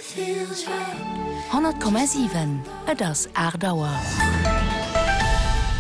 100,7 Et ass 8 Auer.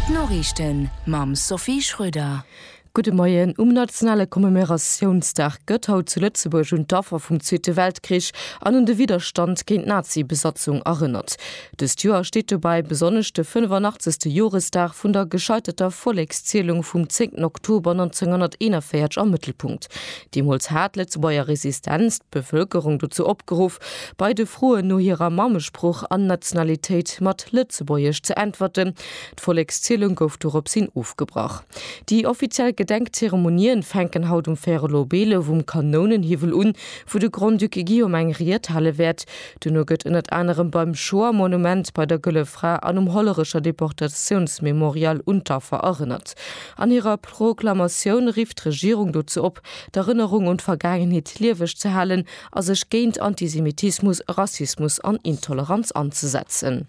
D'Noriichten mam Sophie Schröder. Gudde Moien. Um nationale Commemeratiounsdag gëtt haut zu Lëtzebuerg un d'Affer vum Zweete Weltkrich an un de Widderstand géint d'Nazi-Besatzung erënnert. Dëst Joer steet dobäi besonnesch de 85. Joresdag vun der gescheiterter Vollekszielung vum 10 Oktober 1941 am Mëttelpunkt. Deemools hat d'Lëtzebuerger Resistenz d'Bevëlkerung dozou opgeruff, bei de Froen no hirer Mammesprooch an Nationalitéit mat Lëtzebuergesch ze äntwerten. D'Vollekszielung gouf doropshin ofgebrach. Déi offiziell Gedenkzeremonien fänken haut um Fère Lobello vum Kanounenhiwwel un, wou de Grand-Duc Guillaume eng Ried hale wäert. Duerno gëtt ënnert anerem beim Shoah-Monument, bei der Gëlle Fra an um Hollerecher Deportatiounsmemorial un d'Affer erënnert. An hirer Proklamatioun rifft d'Regierung dozou op, d'Erënnerung un d'Vergaangenheet lieweg ze halen a sech géint Antisemitismus, Rassismus an Intoleranz anzesetzen.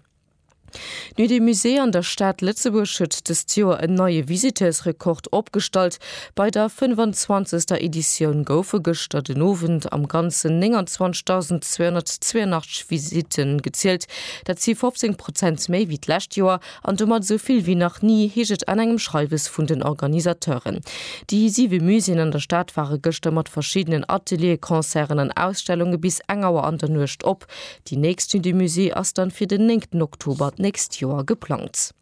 D'Nuit des Musées an der Stad Lëtzebuerg huet dëst Joer en neie Visiteursrekord opgestallt. Bei der 25. Editioun goufe gëschter den Owend am Ganzen 29.282 Visitte gezielt. Dat si 15 Prozent méi wéi d'lescht Joer an domat esou vill wéi nach ni, heescht et an engem Schreiwes vun den Organisateuren. Déi siwe Muséeën an der Stad ware gëschter mat verschiddenen Atelieren, Concerten an Ausstellunge bis eng Auer an der Nuecht op. Déi nächst Nuit du Musée ass dann fir den 9 Oktober d'nächst Joer geplangt.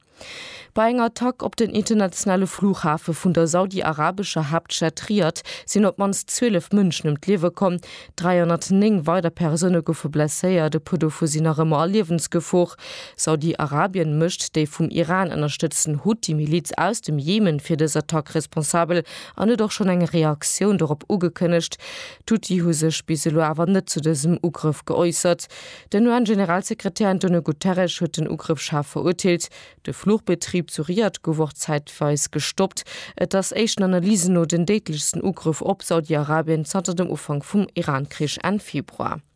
Bei enger Attack op den internationale Flughafe vun der saudi-arabescher Haaptstad Riad sinn op d'mannst 12 Mënschen ëm d'Liewe komm. 309 weider Persoune goufe blesséiert, e puer dovu sinn nach ëmmer a Liewensgefor. Saudi-Arabien mécht déi vum Iran ënnerstëtzten Huthi-Miliz aus dem Jemen fir dës Attack responsabel an huet och schonn eng Reaktioun dorop ugekënnegt. D'Houthi hu sech bis elo awer net zu dësem Ugrëff geäussert. Den UN-Generalsekretär Antonio Guterres huet den Ugrëff schaarf verurteelt. De Fluchbetrib zu Riyadh gouf och zäitweis gestoppt. Et ass éischten Analysen no den déidlechsten Ugrëff op Saudi-Arabien zanter dem Ufank vum Iran-Krich Enn Februar.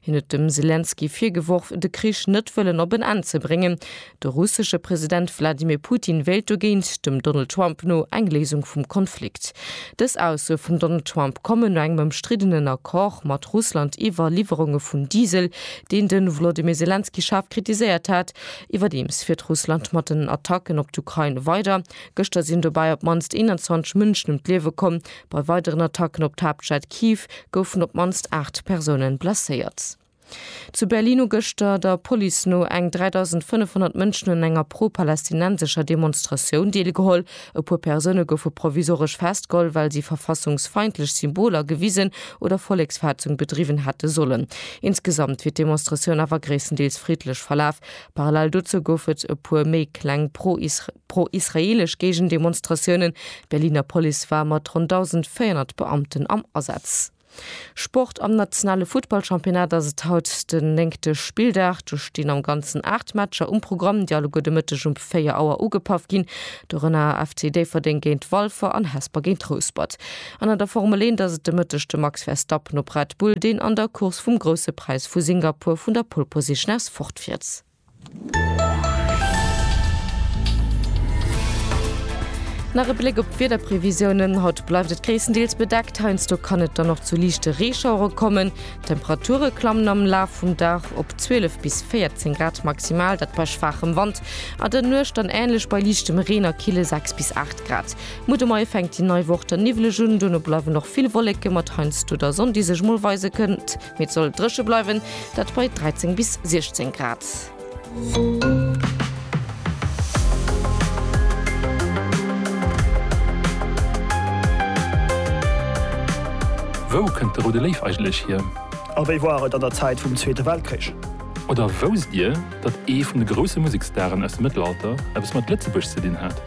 Hien huet dem Selenskyj virgeworf, de Krich net wëllen op en Enn ze bréngen. De russesche President Wladimir Putin wéilt dogéint, dem Donald Trump no, eng Léisung vum Konflikt. Dës Aussoe vum Donald Trump kommen no engem ëmstriddenen Accord mat Russland iwwer Liwwerunge vun Diesel, deen de Volodymyr Selenskyj schaarf kritiséiert hat. Iwwerdeems fiert Russland mat den Attacken op d'Ukrain weider. Gëschter sinn dobäi op d'mannst 21 Mënschen ëm d'Liewe komm, Bei weideren Attacken op d'Haaptstad Kiew goufen op d'mannst 8 Persoune blesséiert. Zu Berlin hu gëschter, der Police no, eng 3.500 Mënschen un enger pro-palästinensescher Demonstratioun deelgeholl. E puer Persoune goufe provisoresch festgeholl, well si verfassungsfeindlech Symboler gewisen oder Volleksverhetzung bedriwwen hätte sollen. Insgesamt wier d'Demonstratioun awer gréisstendeels friddlech verlaf, Parallel dozou gouf et e puer méi kleng pro-israeelesch Géigendemonstratiounen. D'Berliner Police war mat ronn 1.400 Beamten am Asaz. Sport, Am nationale Futtballchampionnat ass et haut den néngte Spilldag. Do stinn am Ganzen 8 Matcher um Programm, déi alleguer de Mëtteg um 4 Auer ugepaff ginn. Dorënner FC Déifferdeng géint Walfer an Hesper géint Rouspert. An an der Formel Eent ass et de Mëtteg de Max Verstappen op Red Bull, deen an der Course vum Grousse Präis vu Singapur vun der Pole Position aus fortfiert. Nach e Bléck op d'Wiederprevisiounen, Haut bleift et gréisstendeels bedeckt, heiansdo kann et dann och zu liichte Reeschauere kommen. D'Temperature klammen am Laf vum Dag op 12 bis 14 Grad maximal, dat bei schwaachem Wand, an der Nuecht dann änlech bei liichtem Reen a kille 6 bis 8 Grad. Mutt um Mei fänkt déi nei Woch dann niwwleg un, duerno bleiwen och vill Wolleke mat heiansdo der Sonn, déi sech mol weise kënnt, mee et soll dréche bleiwen, dat bei 13 bis 16 Grad. Wou kënnt de Roude Léif eigentlech hier? A wéi war et an der Zäit vum Zweete Weltkrich? Oder wousst Dir, datt ee vun de grousse Musekstaren aus dem Mëttelalter eppes mat Lëtzebuerg ze dinn hat?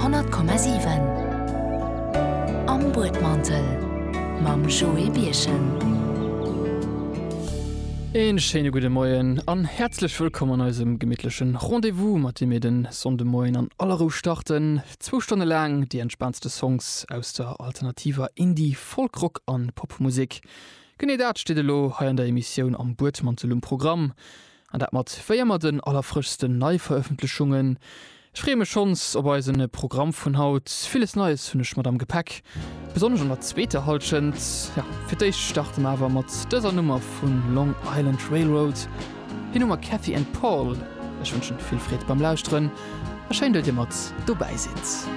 100,7 Am Buedmantel mam Joé Birchen. Een schéine gudde Moien an häerzlech wëllkomm an eisem gemittlechen Rendez-vous, mat deem mir den Sonnde Moien an aller Rou starten. Zwou Stonne laang déi entspaantste Songs aus der alternativer Indie-, Folk-, Rock an Pop-Musek. Genee dat steet elo hei an der Emissioun Am Buedmantel um Programm. An dat mat véier mat den allerfrëschsten Neiverëffentlechungen. Ech freeë mech schonns op eisen Programm vun haut. Villes Neies hunn ech mat am Gepäck, besonnesch an der zweeter Hallschent. Jo, fir d'éischt starte mer awer mat dëser Nummer vu Long Island Railroad. Hien hu mer Cathy and Paul. Ech wënschen vill Freed beim Lauschteren a schéin, datt dir mat dobäi sidd.